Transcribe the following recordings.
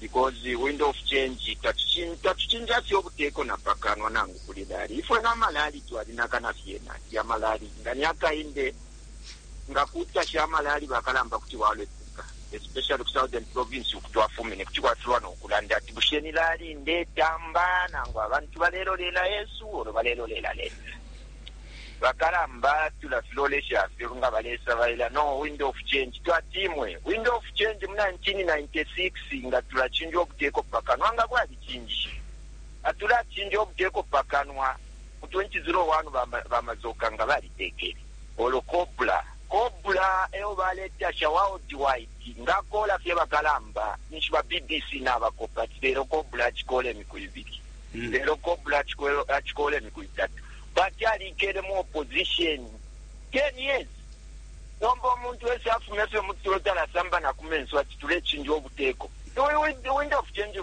because wind of change tatucinja fye ubuteko na pakanwa nangu kuli lali ifwe na malali twalinaka na fyena ya malali nga ni akainde nga kutasha amalali bakalamba kuti walepuka especially ku southern province ukutwafumine kuti kwatulwa nokulanda ati bushe ni lali ndetamba nangu abantu balelolela yesu olo balelolela leta Bakalamba tulafilolesha fye nga balesabaila no Wind of Change. Twati imwe, Wind of Change mu 1996 nga tulacinja ubuteko pa kanwa nga bwalicinjishe. Nga tulacinja ubuteko pa kanwa mu 2001 ba ba Mazoka nga balitekele. Olo Cobra, Cobra eyo baletasha worldwide. Nga akola fye bakalamba ninshi ba bbc nabakopa ati lelo Cobra acikola imiku ibili. Lelo cobra achikola imiku itatu but alikele mu opposition 10 years. Nomba umuntu ese afume fye mutulo talasamba nakumenso ati tulechinja ubuteko. Kuli wind of change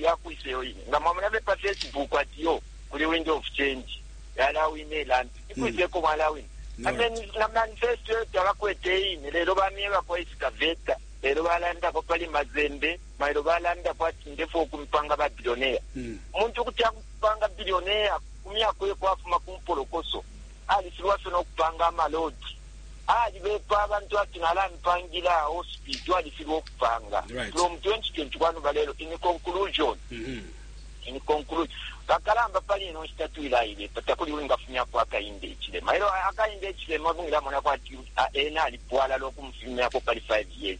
yakwisa iyo ine? Nga mwamona fye pa facebook ati yo kuli wind of change yalawina ilampi ikwisa eko mwalawina. Ameni na manifesto yo tabakwete iyine lelo bamyebako excavator lelo balandako pali Mazembe. Mailo balanda kwati ndefwaya ukumipanga ba billionaire. Umuntu kuti akupanga billionaire ku myaka uye kwafuma ku mpolokoso. Alifilwa fye no kupanga ama road. Alibepa abantu ati nalamipangila hospital alifilwa ukupanga. Right. From 2021 balelo in conclusion in conclude bakalamba pali ino nshita twilaibepa takuli wingafumyapo akainde ichilema elo akainde ichilema bungilamona kwati ah, ena alipwala lokumufumyako pali 5 years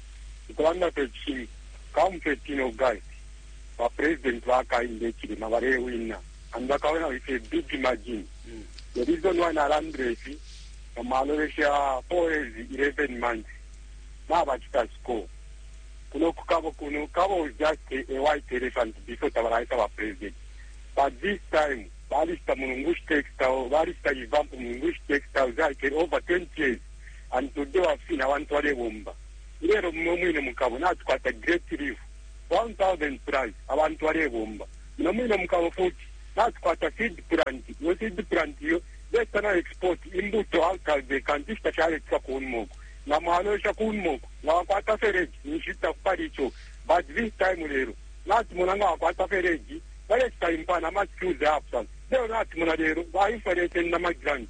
Ukulanda fye ichingu, come 13 August ba president ba Hakainde Hichilema balewina and bakawina with a big margin. The reason why nalandila ifi, nga mwalolesha 4 years, 11 months, nabachita score. Kuno ku Kabo kuno, Kabo was just a, a white elephant before tabalaisa ba president. But this time, balista Mulungushi Textile, balista Ivampu Mulungushi Textile, zalikele over 20 years. and today wafina abantu balebomba ilelo mumwe mwine mukabo natukwata great relief 1000 plus abantu balebomba muno mwine mukabo futi natukwata seed plant iyo seed plant iyo beta na export imbuto out of the country ishitashaletwa kunmoko nga mwalosha kunmoko nga wakwata fereji ninshita kupali ico but this time lelo natumona nga wakwata fereji balesita impana ama excuse apsa lelo natumona lelo bainflation na magrant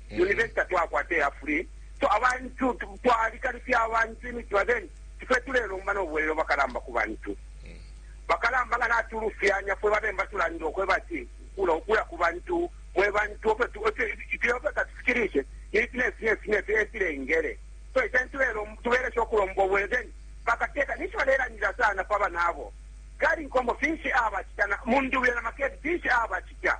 university tatwakwata iya free so abantu twalikalifya abantu imitima then fwe tulelomba no bwelelo bakalamba ku bantu bakalamba nga natulufyanya fwe babemba tulandile okweba ati kula okuya ku bantu mwe bantu ifyofye katufikirishe ifi nefi nefi nefi efilengele so icani tubelesha okulomba obwelelo then bakateka ninshi balelandila sana pa banabo gari nkombo finshi abacita mundubile na makedi finshi abacita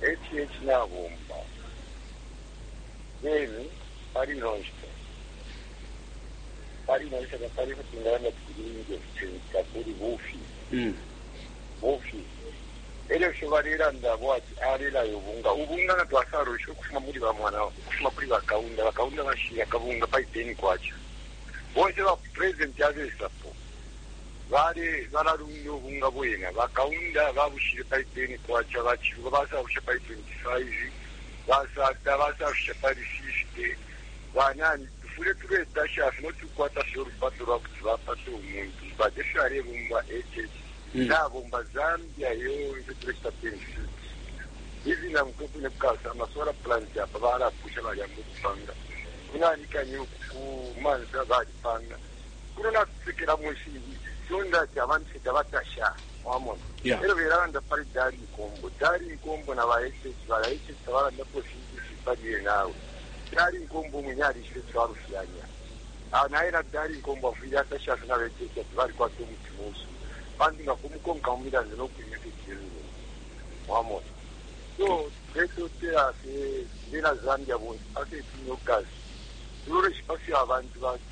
HH Nabomba beni pali ino nshita, pali ino nshita tapali ifyo twingalanda ati kulungi or kuchinchi, takuli, bufi bufi. Elyo ifyo balelanda abo ati alelaya ubunga, ubunga nga twasalwishe ukufuma muli ba mwana, ukufuma kuli ba Kaunda, ba Kaunda bashile akabunga pali K10, bonse ba president abesapo, Bale bala lunga ubunga bwena. Ba Kaunda ba bushile pali K10, ba Chiluba ba sabusha pali 25, ba Sata ba safisha pali 50. Ba nani tufwile tule tasha fye no tu kwata fye ulupato lwa kuti ba pata umuntu but efyo ale bomba HH na bomba Zambia yonse tule chita 26. Izi na mutwe kwine kukasa ama solar plant apa bala pusha bali amba ukupanga. Kunani kani uku ku mansa bali panga. kuno natusekelamo ifingi fyonda ati abantu fye tabatasha wamona yeah. elo belalanda pali dali nkombo dali nkombo na ba hh bala hh tabalandapo ifingi ifi pali ye nawe dali nkombo umwine alishibe twalufyanya ah, naye na dali nkombo afwile atasha fye na ba hh ati balikwata umutima usu pantu nga kumukonka mu milando no kwimya fye kyemine wamona so betotela fye bena zambia bonse paketinyokazi tuloleshipa fye abantu batu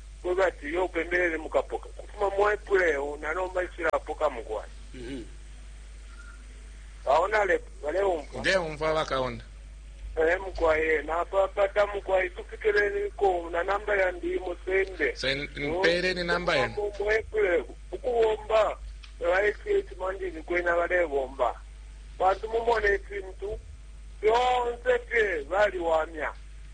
Kweba ati uyo upembelele mukapoka. Kufuma mu April eho na nomba nshilapoka mukwai. Mhm. Aona le baleumva. Ndeumva bakaonda. Eh mukwai eh, napapata mukwai tufikireniko na namba yandi musende. Se mpere ni namba yenu. Mu April ukubomba baisieti mandini kwena balebomba. Bantu mumone ifintu fyonse fye baliwamya.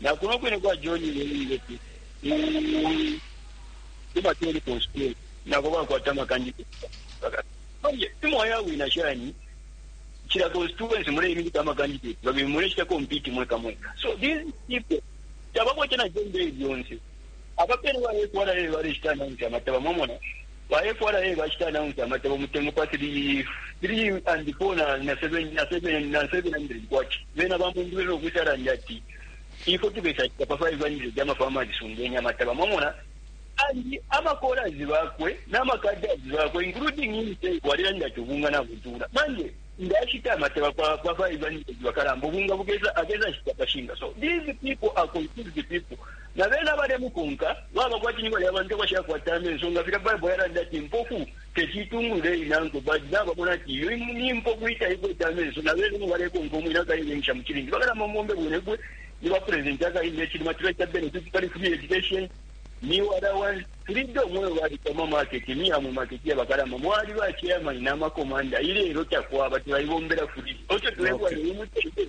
Na kuno kwine kwa John Lewile ku kuma telephone school nako bakwata makandida manje imo yawina shani kila constituency muleiminika amakandidate babili mulechita compete mweka mweka so these people tabakwete na jembe lyonse abapelwa ekwala lelo balechita nanti amataba mwamona Ba FRA bacita announce amatabo mutengo pa K3, K3 and K4 na K7, na K7, na K700. Bena ba Munduwile no kwisa landa ati, Ifwe tukesa shita pa K500 ama farmers sungeni amataba. Mwamona? And ama callers bakwe nama cadres bakwe including himself walilanda ati ubunga na butula. Manje, ndashita amataba pa, pa K500 bakalamba, ubunga bukesa, akesa shita pa shinga. So these people are confused people. Na bena abalemukonka baba kwati ni balya bantu abashakwata amenso, nga filya Baibo yalanda ati, Impofu teti itungulule iinankwe. Ba Dna bamona ati iyo ni impofu iitaikwete amenso, na bena umo balekonka umwine akaibengisha mu cilindi. Bakalama umombe bunebwe, ni ba presidenti akalinda icilima, tuleta benefit pali free education, meal allowance, freedom iyo babika mu ma market, miya mu market iya bakalamba mwali ba chairman na ma commander, ilelo takwaba, tulaibombela fweka. Eco tulefwaya uyu mutende.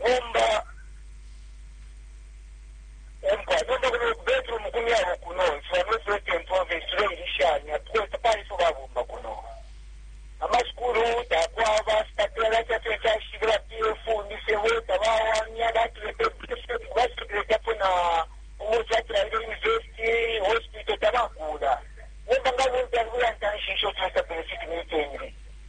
Nomba, umfwa, nomba kuno ku bedroom ku myabo kuno, nsuba no president province tule ilishanya, because tapali ifyo babomba kuno. Ama school takwaba, sipatela chafye chashile, ba PF, misebo, tabawanya, batule pe, basipatela chapo na, umutu atila ile university, hospital, tabakula. Nomba nga bunta, nguya ntanshi, isho tuwesa benefit ni itengi.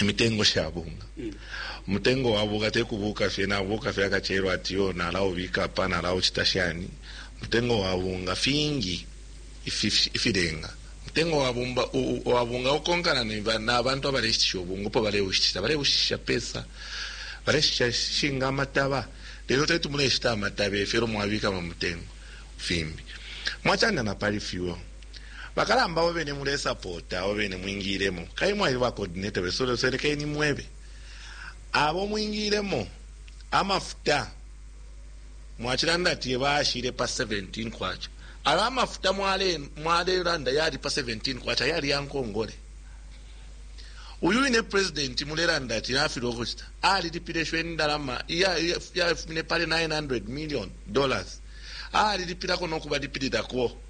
imitengo sha bunga umutengo wa bunga te kubuka fye nabuka fye akacelo ati yo nalaubika apa nalaucita shani umutengo wa bunga fingi ifi- ifilenga umutengo wa bumba- u- u- wa bunga ukonkana ne ba- n'abantu abaleshitisha ubunga upo baleushitisha baleushitisha pesa baleshitisha shinga amataba lelo teti muleshita amataba efyo elo mwabikamo umutengo fimbi mwacanda na pali fyuo Bakalamba abo bene mulesapota, abo bene mwingiilemo, kabili mwaliba ba coordinator besu leso, lekeni mwebe abo mwingiilemo amafuta mwacilanda ati yebaashile pa K17. Ayo amafuta mwalelanda yali pa K17 yali ya nkongole. Uyu wine presidenti mulelanda ati nafilwa ukucita, alilipile isho indalama iyafumine pali K900 milioni, alilipilako no kubalipililako.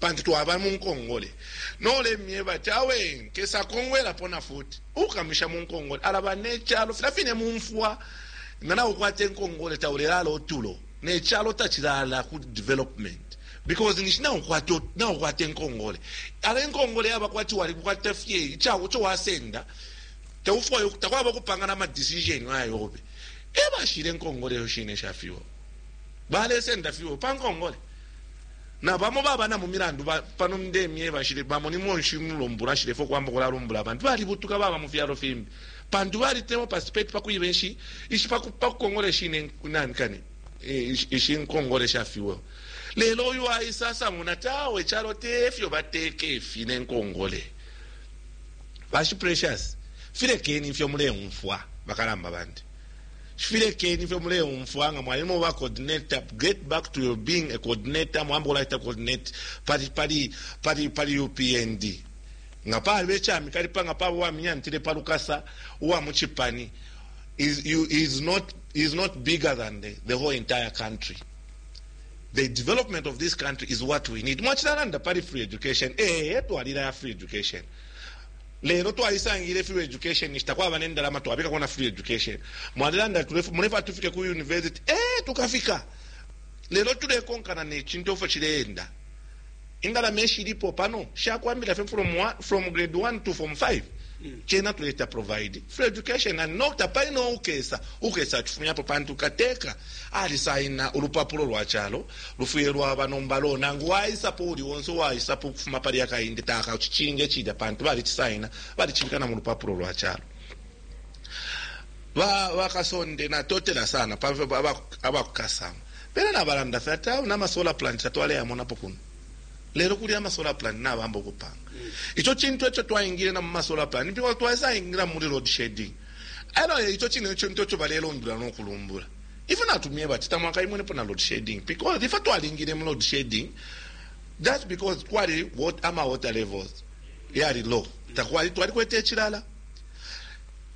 pantu twaba mu nkongole. No ulemyeba ati, Awe nkesa kongwelapo na futi, uukamusha mu nkongole alaba ne calo. Filya fine mu mfwa nga naukwata inkongole taulelaala utulo, ne calo tacilaala ku development because ninshi naukwata ut- naukwata inkongole. Ala inkongole yaba kwati walikwata fye ica- ico wasenda taufwayo takwaba ukupangana ama decision ayobe ebashile nkongole yo shine shafiwo balesenda fiwo pa nkongole Na bamo baba na mu milandu ba, pano ndemye bashile, bamo ni monshi mulumbulo ashilefo kwamba kulalumbula abantu balibutuka baba mu fyalo fimbi pantu bali temo participate pa kwiba ishi ishi pa kukongola ishi ne nani kani ishi nkongole sha fuel lelo uyu aisa asamuna tawe chalo tefyo bateke ifi ne nkongole bashi precious filekeni ifyo muleumfwa bakalamba bandi Shfi lekeni ifyo muleumfwa nga mwaima uba coordinator get back to your being a coordinator mwambo kulacita coordinate pali pali pali pali upnd nga paliba icamikalipa nga paba uwaminyantile pa lukasa uwa mu cipani is, you, is not, is not bigger than the, the whole entire country the development of this country is what we need mwacilalanda pali free education ee twalila ya free education Lelo twalisangile free education ninshi takwaba ne ndalama twabikako na free education. Mwalilanda ati mulefwaya tufike ku university. Ee tukafika! Lelo tulekonkana ne cintu efyo cileenda. Indalama ishilipo pano shakwambila fye from one, from grade 1 to form 5. Cena tuleta provide free education and no tapali no ukesa ukesa cifumyapo pantu kateka alisaina ulupapulo lwa calo Lufwile lwaba nomba lo, nangu waisapo uuli onse uwaisapo ukufuma pali aka Inde taka cicinge cilya pantu balicisaina, balicibika na mulupapulo lwa calo. Ba bakasonde na totela sana pa abakukasama. Bena na balanda fe ati awe nama solar plant tatwale yamonapo kuno. Lelo kuli ama solar plant na bamba ukupanga. Mm. Icho chintu echo twaingile na muma solar plant. Ndipo twaisa ingila muli road shedding. Elo icho chine icho ntocho balelo ndula no kulumbula. Ifwe natumyeba ati tamwakaimwenepo na load shedding because ifwe twalingile mu load shedding just because kwali wat, ama water levels yali low takwali twalikwete icilala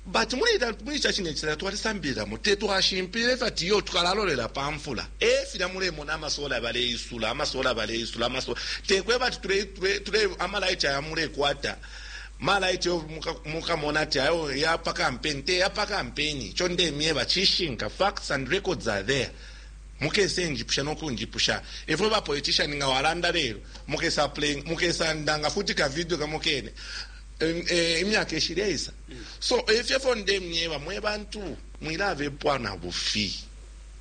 but muli muli cha chine chilala twalisambililamo te twashimpile ifyo ati yo tukalalolela pa mfula e filya mulemona amasola baleisula amasola baleisula amasola tekweba ati tule tule tule amalaiti aya mulekwata Malaiti yo mukamona ati ayo yapa kampeni te yapa kampeni. Ico ndemyeba cishinka. Facts and records are there. Mukese njipusha no kunjipusha. Ifwe ba politician nga walanda lelo, mukesa playing, mukesa ndanga futi ka video kamo kene eh, imyaka ishileisa. So efyo fyo ndemyeba mwe bantu mwilabepwa na bufi.